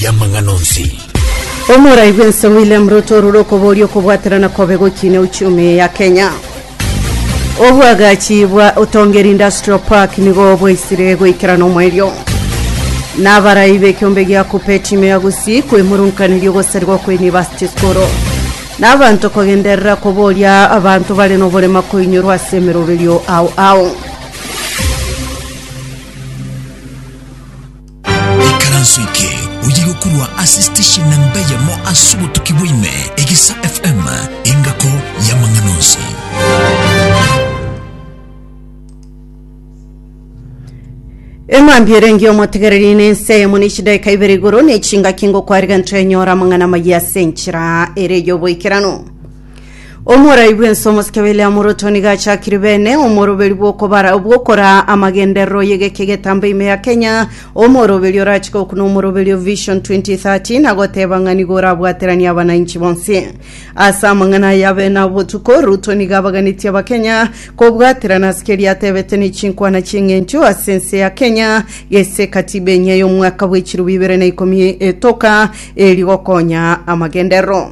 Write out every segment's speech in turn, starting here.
y'amang'ana onsi. Omorai bw'ense William Ruto orure okobooria okobwaterana kobe gokiina euchumi ya Kenya. Obwagachi bwa Otongeri Industrial Park nigo bwaisire goikerana omoerio. Na abarai b'ekiombe gia KUPPET ime ya Gusii kwemurunkaneria ogosarigwa kwa University School. Na abanto kogenderera kobooria abanto bare noborema koinyorwa ase emeroberio ao ao. Ekaranso eke oye gokorwa ase station na mbeyemo ase obotuki bwaime Egesa FM engako y'amang'ana onsi. eng'ambi erenge omotegereri nense eyemo ne chidaika ibere igoro ne chingaki ngokwariga ntwenyora amang'ana amaya ase enchera ere y'oboikeranu Omorai bw'ense omosike William Ruto nigo achakire bene omoroberi bw'okobara bw'okoraa amagenderero y'egeka egetambe ime ya Kenya, omoroberi orache gokuna omoroberi o Vision 2030 na goteba ng'a nigo orabwateranie abanainchi bonsi. Ase amang'ana aya abe na botuko, Ruto nigo abaganetie Abakenya kobwaterana ase keria atebete ne chinkwana chi'eng'encho ase ense ya Kenya gese Katiba enyia y'omwaka bw'echiroba ibere na ikomi etoka eri gokonya amagenderero.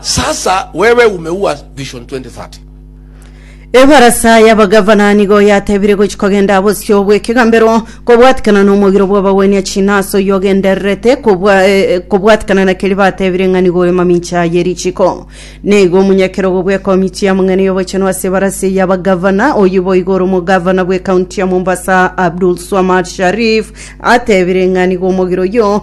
Sasa wewe umeua Vision 2030. Ebarasa y'abagavana nigo yatebire gochi kogenda bosio bw'ekegambero kobwatikana n'omogiro bw'abagwenia china ase oyio ogendererete kobwa- eh, kobwatikana na keri batebire ng'a nigo ore mamincha ye richiko nigo omonyakerogo bw'ekomiti y'amang'ana y'obochenu ase ebarasa y'abagavana oyio boigo ore omogavana bw'ekaunti ya mombasa abdul swamad sharif atebire ng'a nigo omogiro oyio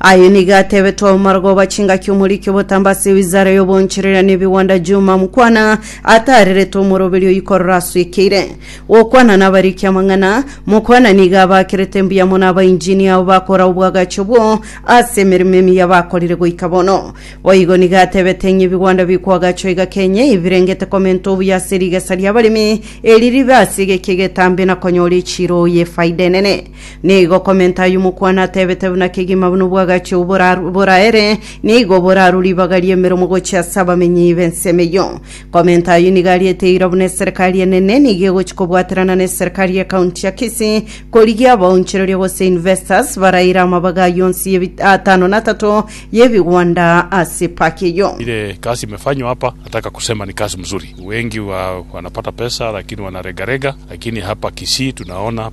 Aye nigo atebete omomarogoba chingaki omoriki obotamba ase ewizara y'oboncherera n'ebigwanda Juma Mkwana ataarerete omoroberi oyio korora aswekeire gokwana nabariki amang'ana. Mkwana nigo abakerete mbuya mono abainjini abo bakora obwagachi obwo ase emeremo emiya bakorire goika bono. Boigo nigo atebete ng'a ebigwanda bikwagachwa iga Kenya ebirengete komenta obuya ase rigesa ri'abaremi eri ribe ase egeki egetambe na konyora echiiro y'efaida enene. Nigo komenta ayio mokwana atebete buna kegima buna obwagachi obwo boraru- boraere, nigo boraru ribaga ri'emeromo gochia ase abamenyi b'ensemo eyio. Komenta ayio nigo ariete eira buna eserekari enene, nigo egochia kobwaterana n'eserekari y'ekaunti ya Kisii, korigia abaonchoreria gose investors baraire amabaga ayio onsi y'ebi- atano na atato y'ebigwanda ase epaki eyio. Ile kazi imefanywa hapa nataka kusema ni kazi mzuri. Wengi wa, wanapata pesa lakini wanaregarega, lakini hapa Kisii tunaona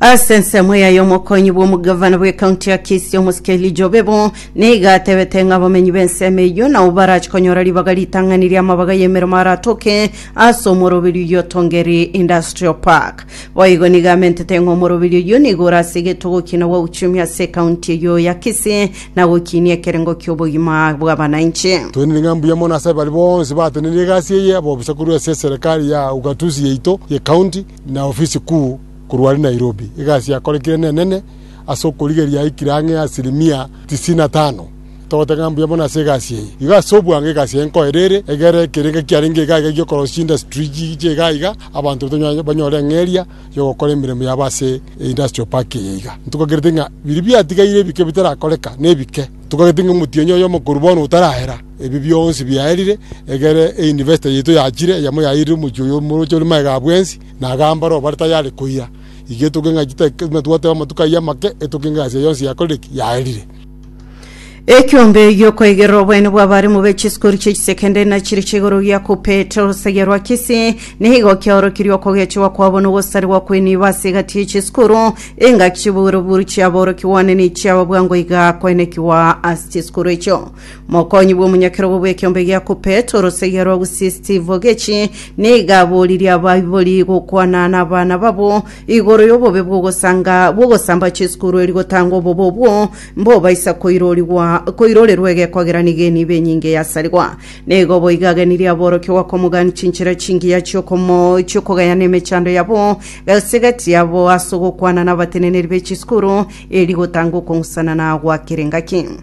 Ase ensemo yaye omokonyi bw'omogavana bw'ekaunti ya Kisii omosike Elijah Obebo nigo atebete ng'a abamenyi b'ensemo eyio nao barache konyora ribaga ritang'ani ri'amabaga y'emeremo aratoke ase omoroberio oyio o Tongeri Industrial Park. Boigo nigo amentete ng'a omoroberio oyio nigo ore ase egetogo kiina gwa uchumi ase ekaunti eyio ya Kisii na gokiinia ekerengo ki'obogima bw'abananchi. Twenire ng'a mbuya mono ase baria bonsi batenenirie egasi eye, ab'obosaku korwa ase eserekari ya ugatuzi yaito y'ekaunti, na ofisi kuu korwa are Nairobi. Egasi yakorekire nenene ase okorigereria yaikire ang'e asirimia tisini na tano. Togotenga ng'a mbuya mono ase egasi eye. Igo ase obwango egasi eye nkoerere, egerore ekerengo ekiarenge iga iga gi'okorosia industry chiche iga iga, abanto baito banyare banyore eng'eria y'ogokora emeremo yabo ase industrial park eye iga. Ntugagete ng'a biria biatigaire ebike bitarakoreka, nebike. Ntugagete ng'a omotienyi oyomo korwa bono otarahera. Ebi bionsi biaerire egere einvestor yaito yachire, eyemo yairire omochie oyo omoroche ore magega a bwensi, na agamba aroro bare tayare koira. Iga etoke ng'a titari twateba amatuko ayio amake, etoke ng'a ense yonsi yakorire ki? Yaerire. Ekiombe gi'okoigerera oboene bw'abaremu be chisukuru chie chisekendari na chiri chia igoro gia Kuppet, orosegi rwa Kisii, nigo kiaorokirie okogechigwa kwabo na ogosarigwa kw'enibo ase egati ye chisukuru engaki chiburu-buru chi'aborokigwa one ne chi'ababwangwa iga koenekigwa ase chisukuru echio. Mokonyi bw'omonyakerogo bw'ekeombe gia Kupet, orosegia rwa Gusii Steve Ogechi, niga aboririe abaibori gokwana nabana babo igoro y'obobe bw'ogosanga bw'ogosamba chisukuru erio gotanga obobe obwo mbobaisa koirorigwa koirorerwa egekogera nigo enibo enyinge eyasarigwa. Nigo boiga agenirie aborokigwa komogania chinchera chingiya chi'okomo chi'okogayana emechando yabo gase gati yabo ase ogokwana nabateneneri be chisukuru erio gotanga okong'usana na goakera engaki.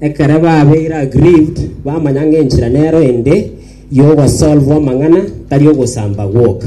Ekero babeire aggrieved bamanya ng'enchera nero ende y'ogosolvwa amang'ana, tari ogosamba gwoka.